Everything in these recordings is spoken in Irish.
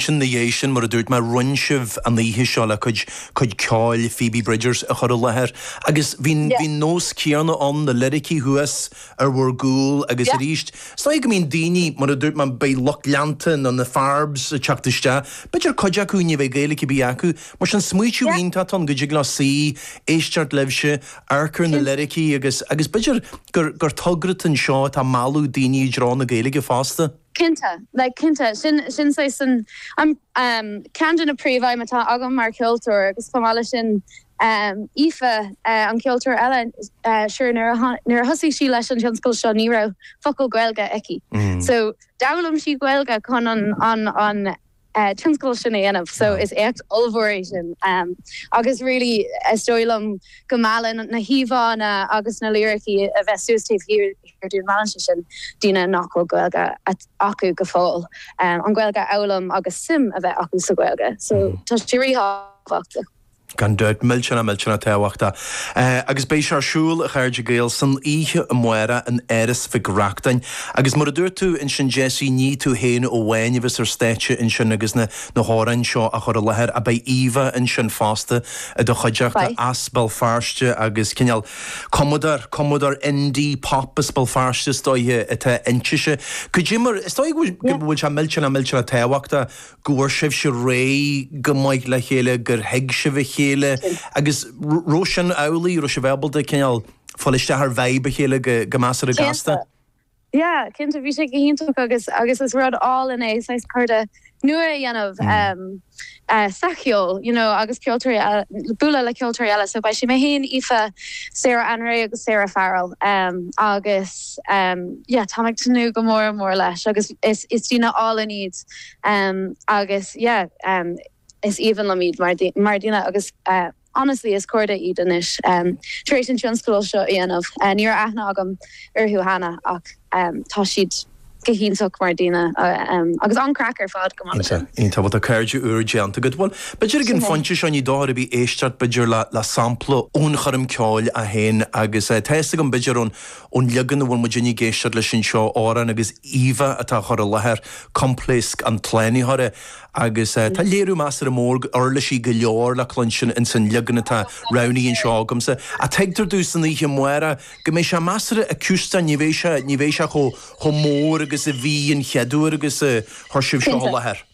Sin ina dhiaidh sin, mar a dúirt mé, roinn sibh an oíche seo le cuid, cuid ceoil, Phoebe Bridgers a chur i láthair agus bhí, bhí an nós céanna ann, na liricí thuas ar bhur gcúl agus arís, is dóigh go mbíonn daoine, mar a dúirt mé, beidh lucht leanta nó na Pharbz ag teacht isteach, b'fhéidir cuid acu ní bheidh Gaeilge ar bith acu, mar sin smaoitiú iontach atá ann go dtig leo suí, éisteacht libhse, amharc ar na liricí agus, agus b'fhéidir gur, gur togra den seó atá ag mealladh daoine i dtreo na Gaeilge fosta. Cinnte, like cinnte. Sin, sin saghas an, an, ehm, ceann de na príomhaidhm atá agam mar cheoltóir agus chomh maith leis sin, ehm, Íomhá, eh, an ceoltóir eile, eh, sure nuair a tháin, nuair a thosaigh sí leis an tionscal seo ní raibh focal Gaeilge aici. So, d'fhoghlaim sí Gaeilge chun an, an, an, tionscadal sin a dhéanamh so is éacht ollmhór é sin agus really is dóigh liom go meallann na híomhánna agus na liricí a bheith suas taobh thiar dúinn meallann sé sin daoine nach bhfuil Gaeilge acu go fóill an Ghaeilge a fhoghlaim agus suim a bheith acu sa Ghaeilge so tá sé ríthábhachtach. Gan dabht, millteanach millteanach tábhachtach. Agus beidh sé ar siúl, a chairde Gaeil, san oíche amárach in Áras Mhic Reachtain. Agus mar a dúirt tú ansin Jessie, ní tú féin amháin a bheas ar stáitse ansin agus na na hamhráin seo á chur i láthair ach beidh Íomhá ansin fosta i do chuideachta Beidh. as Béal Feirste agus cineál cumadóir, cumadóir indie pop as Béal Feirste is dóiche atá inti. Sea, cad é mar, is dóigh go bhfuil, go bhfuil sé millteanach millteanach tábhachtach go bhfuair sibhse réidh go maith le chéile, gur thuig sibh a chéile agus raibh sin amhlaidh, raibh sibh ábalta cineál fáil isteach ar vibe a chéile go measartha gasta? Cinnte. Yeah, cinnte. Bhí sé go hiontach agus agus is rud álainn é saghas cairde nua a dhéanamh ehm eh sa cheol you know agus ceoltóirí eh bualadh le ceoltóirí eile so beidh sé mé fhéin, Íomhá, Sarah Anré agus Sarah Farrell ehm agus ehm yeah táim ag tnúth go mór mór leis agus is is daoine álainn iad. agus yeah is aoibhinn liom iad mar dhaoine agus honestly is cairde iad anois tar éis an tionscadal seo a dhéanamh. Ní raibh aithne agam orthu cheana ach tá siad go hiontach mar dhaoine agus an-craic ar fad chomh maith leis sin. Iontach, iontach. Bhuel tá cairde úra déanta agat. Bhuel, b'fhéidir ag an phointe seo ní dochar ar bith éisteacht b'fhéidir le sampla ón choirm ceoil é féin agus tá fhios agam b'fhéidir ón Ón leagan a bhfuil muidinne ag éisteacht leis anseo, amhrán agus Íomhá atá á chur i láthair, coimpléasc an tslánaitheora, agus tá léiriú measartha mór uirlisí go leor le cluinstin ins an leagan atá roghnaithe anseo agamsa. Ach tuigtear domh san oíche amárach go mbeidh sé measartha acústach, ní bheidh sé, ní bheidh sé chomh, chomh mór agus a bhí an chead uair agus a chuir sibh seo i láthair. Cinnte.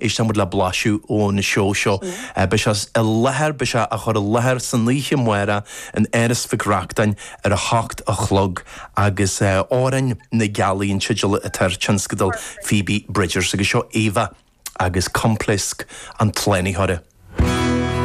éistfidh muid le blaiseadh ón seó seo. Beidh sé i láthair, beidh sé á chur i láthair san oíche amárach in Áras Mhic Reachtáin ar a hocht a chlog agus Árainn na Gealaí an teideal atá ar tionscadal Phoebe Bridgers agus seo íomhá agus coimpléasc an tslánaitheora.